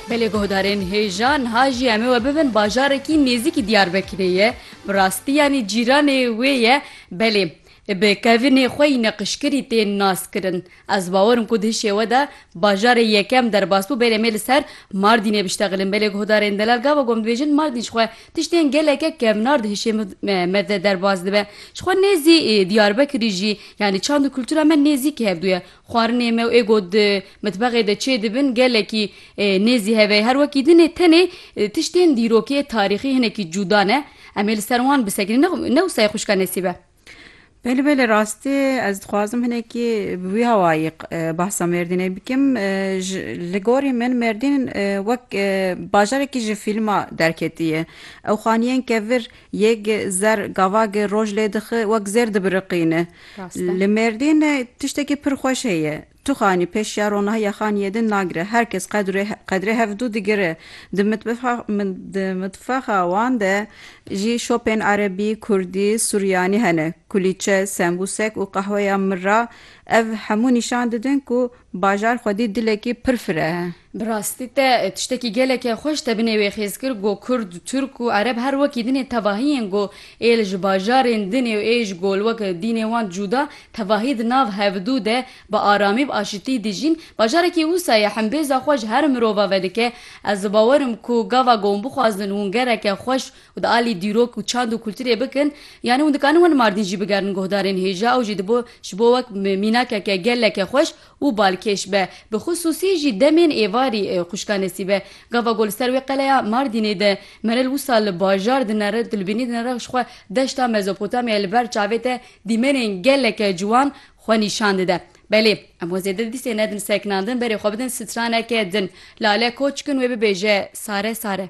Belê guhdarên hêja niha jî em ê we bibin bajarekî nêzîkî Diyarbekirê ye. Bi rastî yanî cîranê wê ye. Belê bi kevinê xwe yî neqişkirî tên naskirin. Ez bawer im ku di hişê we de bajarê yekem derbas bû. Belê em ê li ser Mardînê biştexilin. Belê guhdarên Delal Gavagom dibêjin Mardîn ji xwe tiştên geleke kevnar di hişê me de derbas dibe. Ji xwe nêzî Diyarbekirî jî yanî çand û kultura me nêzîkî hevdû ye. Xwarinê me û ê got di mitbexê de çê dibin gelekî nêzî hev e. Her wekî din e tenê tiştên dîrokê, tarîxî hinekî cûda ne. Em ê li ser wan bisekinî ne ne wisa xwişka Nesîb e. Belê belê rastî ez dixwazim hinekî bi wî hawayî behsa Mêrdînê bikim. Ji li gorî min Mêrdîn wek bajarekî ji fîlma derketiye. Ew xaniyên kevir yek zer gavagê roj lê dixi wek zêr dibiriqîne. Li Mêrdîn tiştekî pir xweş heye. Tu xanî pêş ya ronaha yexaniyê din nagire. Her kes qedrê hevdû digire. Di mitbexa wan de jî şopên erebî, kurdî, suryanî hene. Kulîçe, sembûsek û qehweya mirra ev hemû nîşan didin ku bajar xwedî dilekî pir fireh e. Bi rastî te tiştekî gelekê xweş te binê wê xêz kir go kurd, turk û ereb her wekî dinê tevahiyên go ê li ji bajarên dinê û ê ji go li wek dînê wan cuda tevahî di nav hevdu de bi aramî bi aşitî dijîn. Bajarekî wisa ye himbêza xwe ji her mirova vedike. Ez dibawerim ku gava go hûn bixwazin hûn gereke xweş û di alî dîrok û çand û kulturê bikin yanî hûn dikarin wan Mardîn jî bigerin guhdarên hêja ew jî dibo ji bo wek mînakeke geleke xweş û balkêş be, bi xisûsî jî demên êvarî xwişka Nesîbe. Gava ku li ser wê qeleya Mardînê de Meral wisa li bajar dinere, tu li bînî dinere jixwe deşta Mezopotamyayê li ber çavê te dîmenên geleke ciwan xwe nîşan dide. Belê, em xwe zêde dîsê nedin sekinandin, berê xwe bidin straneke din. Lale koç kin wê bibêje sare sare.